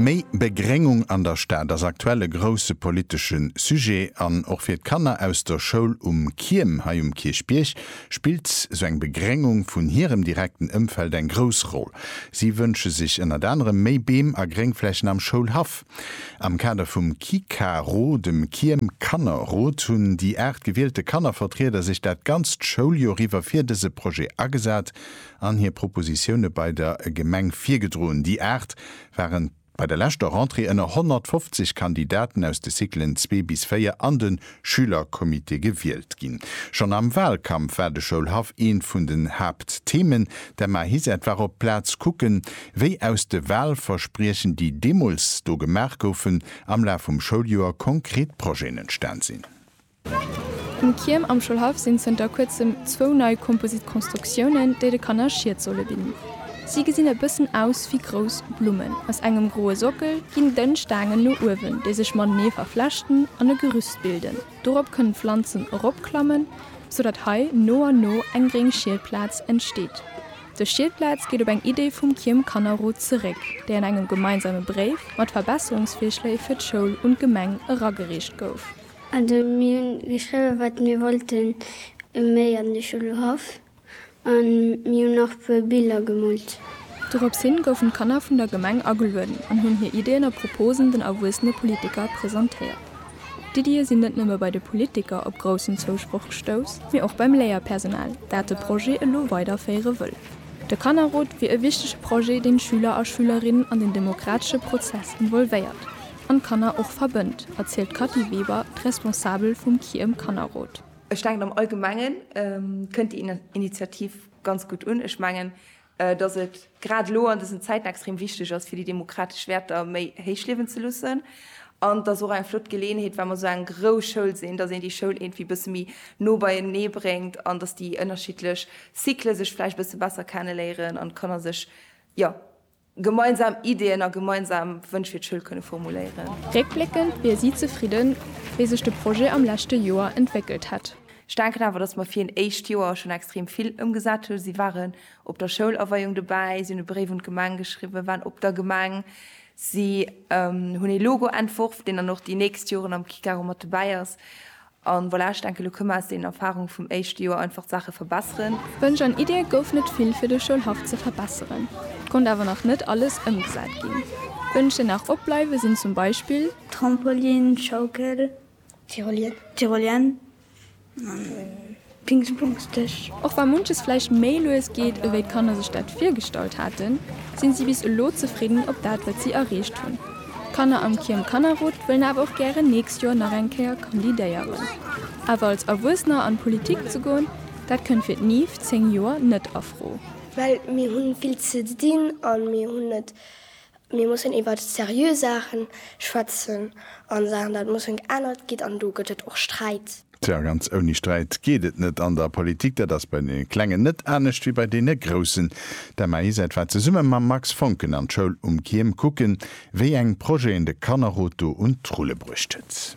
Méi Begréngung an der Stad ass aktuell e grousse politesche Sujet an och fir d'Kanner aus der Schoul Um Kierm hei um Kierchbierg spillt sou eng Begréngung vun hirem direkten Ëmfeld eng grouss Roll. Si wënsche sech ënnert anerem méi Beem a Gréngflächen am Schoulhaff. Am Kader vum KikaRo, dem Kierm Kannerrot, hunn déi 8 gewielte Kannervertrieder sech dat ganzt Schouljoer iwwer fir dëse Projet agesat. an hir Propositioune bei der Gemeng virgedroen. Déi Aacht ware bei der leschter Rentrée ënner 150 Kandidaten aus de Cyclen zwee bis véier an de Schülercomité gewielt ginn. Schonn am Wahlkampf war de Schoulhaff eent vun den Haaptthemen. D'Emma Hiset war op d'Plaz kucken, wéi aus de Wahlverspriechen, déi deemools do gemaach goufen, am Laf vum Schouljoer konkret Projeten entstan sinn. Um Kierm am Schoulhaff sinn zënter kuerzem zwou nei Composite Constructiounen, déi de Kanner Schied solle bidden. Si gesinn e bëssen aus wéi grouss Blummen. Aus engem groe Sockel ginn dënn Staangen no uewen, déi sech matenee verflechten an e Gerüst bilden. Dorop kënnen Planzen eropklammen, sou datt hei no an no eng gréng Schiedplaz entsteet. Dës Schiedplaz geet op eng Iddi vum Kierm Kannerrot zeréck, déi an engem gemeinsame Bréif mat Verbesserungsvirschléi fir d'Schoul un d'Gemeng eragereecht gouf. Also mir hunn geschriwwen, wat mir wollten méi an de Schulhaff an mir hunn och e puer Biller gemoolt. Dorops hin goufen d'Kanner vun der Gemeng agelueden an hunn hir Iddien a Proposen den erwuessene Politiker presentéiert. D'Iddië sinn net nëmme bei de Politiker op groussen Zousproch gestouss, mee och beim Léierpersonal, dat de Projet elo weiderféiere wëll. De Kannerrot wier e wichtege Projet, deen d'Schüler a Schülerinnen an den demokratesche Prozess involvéiert. an d'Kanner och verbënnt, erzielt d'Kathy Weber, d'Responsabel vum KIEM Kannerrot. Ech denken am allgemenge kënnt déi Initiativ ganz gutt un. Ech mengen, datt et grad elo an dësen Zäiten extrem wichteg ass fir déi demokratesch Wäerter méi héich liewen ze loossen. An et ass och eng flott Geleeënheet, well mer esou eng grouss Schoul sinn, datt een déi Schoul iergendwéi bësse méi no beienee bréngt an datt déi ënnerschiddlech Cycle sech vläicht e bësse besser kenneléieren an d'Kanner sech jo Gemeinsam Ideeën a gemeinsam Wënsch fir d'Schoul kënne formuléieren. Réckbléckend wier si zefridden, wéi sech de Projet am leschte Joer entwéckelt hätt. Ech denken awer, datt mer fir een éischt Joer schonn extrem vill ëmgesat hunn. Si waren op der Schoulaweiung dobäi, si hunn e Bréif un d'Gemeng geschriwwen, waren op der Gemeng, si hunn ee Logo entworf, deen dann och déi nächst Joren am Kick aro mat dobäi ass. An voilà, ech denken, elo kënne mer aus deenen Erfahrungen vum éischte Joer einfach d'Saache verbesseren. Wënsch an Iddie gouf net vill fir de Schoulhaff ze verbesseren. Et konnt awer nach net alles ëmgesat ginn. Wënsch déi nach opbleiwe sinn zum Beispill. Trampolin, Schaukel, Tyrolien, Tyrolien. Dingsbumsdeg. Och wa munches vläicht méi lues geet, ewéi d'Kanner sech dat virgestallt haten, sinn si bis elo zefridden op dat, wat si erreecht hunn. D'Kanner am Kierm Kannerrot wëllen awer och gären nächst Joer nach eng Kéier kandidéieren. Awer als Erwuessener an d'Politik ze goen, dat kënnt fir d'Niv, 10 Joer, net a Fro. Well mir hu vill ze dinn a mir hunn net Mir mussen iwwert seriö Saachen schwätzen an Saachen dat mussen geännert ginn an do gëtt et och Sträit. Tja, ganz ouni Sträit geet et net an der Politik. Dat ass bei deene Klengen net anescht wéi bei deene Groussen. D'Emma-Isett war zesumme mam Max Foncken an d'Schoul um Kyem kucken, wéi eng Projeten de Kannerrot do un d'Rulle bruecht huet.